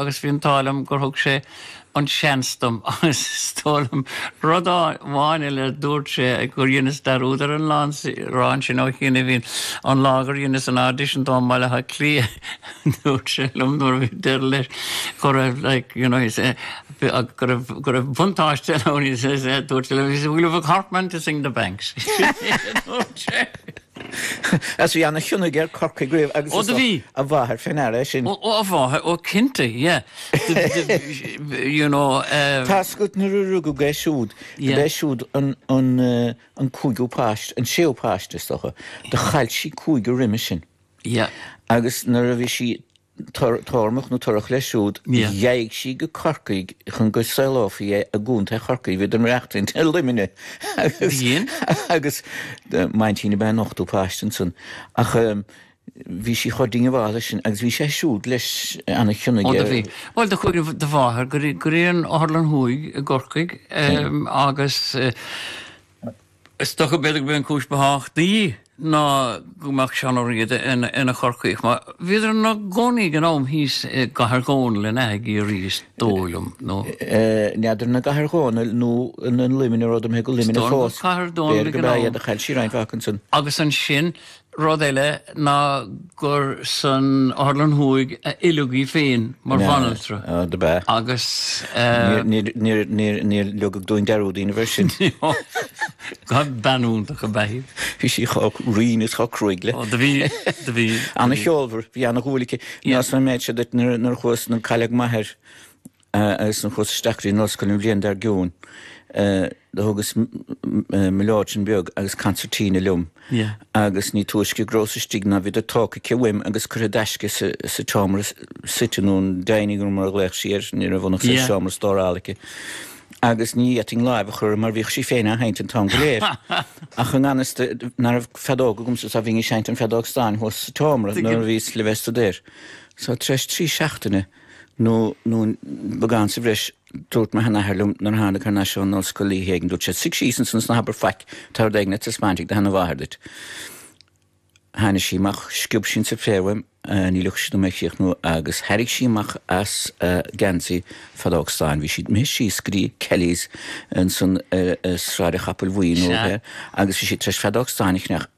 agus bhí an t-ádh liom gur thug sé an seans dom agus is dóigh liom rud amháin eile a dúirt sé gur dheineas dearúd ar an lá ansin ó shin a bhíonn an lá gur dheineas an audition dó i mBaile Átha Cliath dúirt sé liom nuair a bhí deireadh leis go raibh like you know he said go raibh go raibh buntáiste ann he says dúirt sé liom he says we'll have a corkman to sing the banks dúirt sé. Is bhí ana-chion aige ar Chorcaigh riamh agus Ó is do bhí. dócha a mháthair fé ndeara é sin. Ó a mháthair, ó cinnte, yeah. Do bhí, do bhí, you know, eh. Tá's agat nuair a rugadh é siúd, do Yeah. b'é siúd an, an, eh, an cúigiú páiste, an séú páiste is dócha. Do chaill sí cúigear roimis sin. Yeah. Agus nuair a bhí sí Tormach nó torrach leis siúd, do ghaibh sí go Corcaigh chun go saolófaí é i gContae Chorcaí, bhí den racht i Luimneach agus m'aintín ab ea an ochtú páiste ansan ach bhí sí chomh diongbháilte leis sin agus bhí sé siúd leis an-chion aige. Ó, do bhí. Bhuel, do chuaigh do mháthair go dtí an Otharlann Thuaidh i gCorcaigh agus, Is dócha b'fhéidir go b'é an cúis ba thábhachtaí ná go mbeadh Seán Ó Riada ina Chorcaíoch, mar bhíodar ina gcónaí ag an am thíos i gCathair Dhónaill in aice Ciarraí is dóigh liom, nó. n'fheadar an i gCathair Dhónaill nó na Luimnigh, ní rabhadar go Luimneach fós, b'fhéidir go b'ea iad ach chaill sí roinnt mhaith ansin. Agus ansin Rud eile ná gur san Otharlann Thuaidh a oileadh í féin mar bhanaltra agus. Níor leogadh dúinn dearúd a dhéanamh air sin. Ó bean iontach ab ea í. Bhí sí chomh righin is chomh cruaidh le. Ó do bhí, do bhí. Ana cheolmhar, bhí ana dhúil aici. Neosad an méid seo duit nuair chuas, nuair cailleadh m'athair, Agus nuair a chuas-sa isteach go dtí an ollscoil an bhliain dar gcionn, do thugas mileoidean beag agus concertina liom, agus ní túisce go rabhas istigh ná bhíodar tógtha aici uaim agus curtha i dtaisce sa tseomra suite, nó an dining room mar a ghlaodh sí air, ní raibh ann ach seomra stórála aici, agus ní fhéadfainn láimh a chur uirthi mar bhíodh sí féin á sheinnt an t-am go léir. Ach i ngan fhios di ná raibh feadóg agamsa so bhínn ag seinnt an feadóg stáin thuas sa tseomra nuair a bhíos le bheith ag staidéar so tar éis trí seachtaine, nó nó beagán sa bhreis Dúirt mo sheanathair liom nuair a thánag thar n-ais ón ollscoil oíche éigin, dúirt sé, 'Suigh síos ansin is ná habair faic, tá rud éigin le taispeáint ag do sheana-mháthair duit. Tháinig sí amach, sciob sí an suipéar uaim, ní leogfadh sí dom é a chríochnú, agus thairrig sí amach as a geansaí feadóg stáin, bhí sí imithe síos go dtí Kelly's ansan ar Sráid an Chapaill Bhuí nó Sea. agus bhí sí tar éis feadóg stáin a cheannach,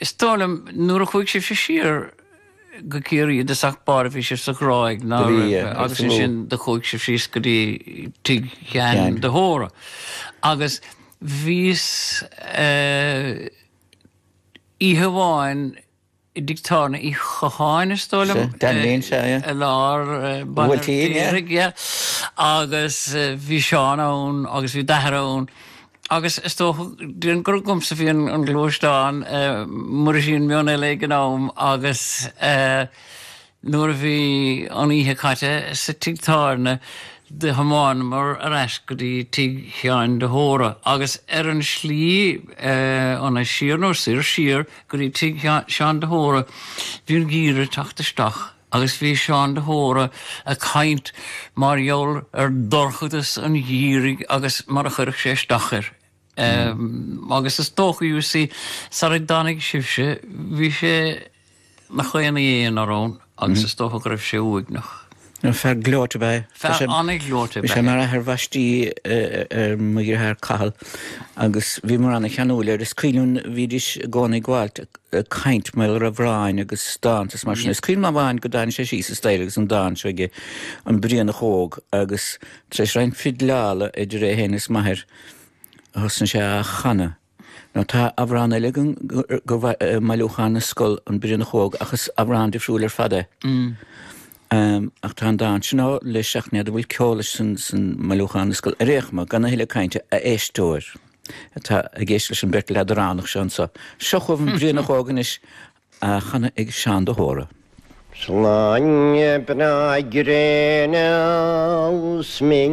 Is dóigh liom, nuair a chuaigh sibhse siar go Ciarraí i dtosach báire bhí sibh sa Ghráig, ná Do bhí, raibh, agus agus mo. ansin do chuaigh sibh síos go dtí tigh Sheáin Sheáin. de hÓra. Agus bhíos eh, oíche amháin, i dtigh Dan Uí Chatháin, is dóigh liom, Sea, Dan Lin, sea, é. i lár an Bhuailtín, é? Baile an Fheirtéaraigh, yeah. Agus bhí Seán ann agus bhí d'athair ann agus is dócha, déarfainn gur agamsa a bhí an gluaisteán, mura sí an Meon Eile ag an am agus eh, Nuair a bhí an oíche caite sa tigh tábhairne do thiomáineamar ar ais go dtí tigh Sheáin de hÓra agus ar an slí ann siar, nó soir, siar go dtí tigh Sheáin de hÓra bhí an geimhreadh ag teacht isteach agus bhí Seán de hÓra ag caint mar gheall ar dhorchadas an gheimhridh agus mar a chuirfeadh sé isteach air. Agus is dócha, you see, sar a dtáinig sibhse, bhí sé ina chónaí ina aonar ann agus is dócha go raibh sé uaigneach. Nó fear gleoite ba é. Fear an-ghleoite ba é. Bhí sé mar athair bhaistí ar mo dheartháir Cathal agus bhíomar an-cheanúil air. Is cuimhin liom, bhídís i gcónaí ag gabháilt ag caint mar gheall ar amhráin agus dánta is mar sin. Is cuimhin liom amháin go dtáinig sé síos an staighre agus an dán seo aige, An Brianach Óg, agus tar éis roinnt fidleála idir é féin is m'athair, a thosaigh sé á chanadh. Now, tá amhrán eile agam gurbh i mBailiúchán na Scol, An Brianach Óg, ach is amhrán difriúil ar fad é. Ach tá an dán sin ann leis ach ní fheadar an bhfuil ceol leis san mBailiúchán na Scol. Ar aon chuma, gan a thuilleadh cainte, a éisteoir atá ag éisteacht leis an bheirt leadránach seo anseo, seo chugaibh An Brianach Óg anois, á chanadh ag Seán de hÓra. 'S lá breá gréine 's mé.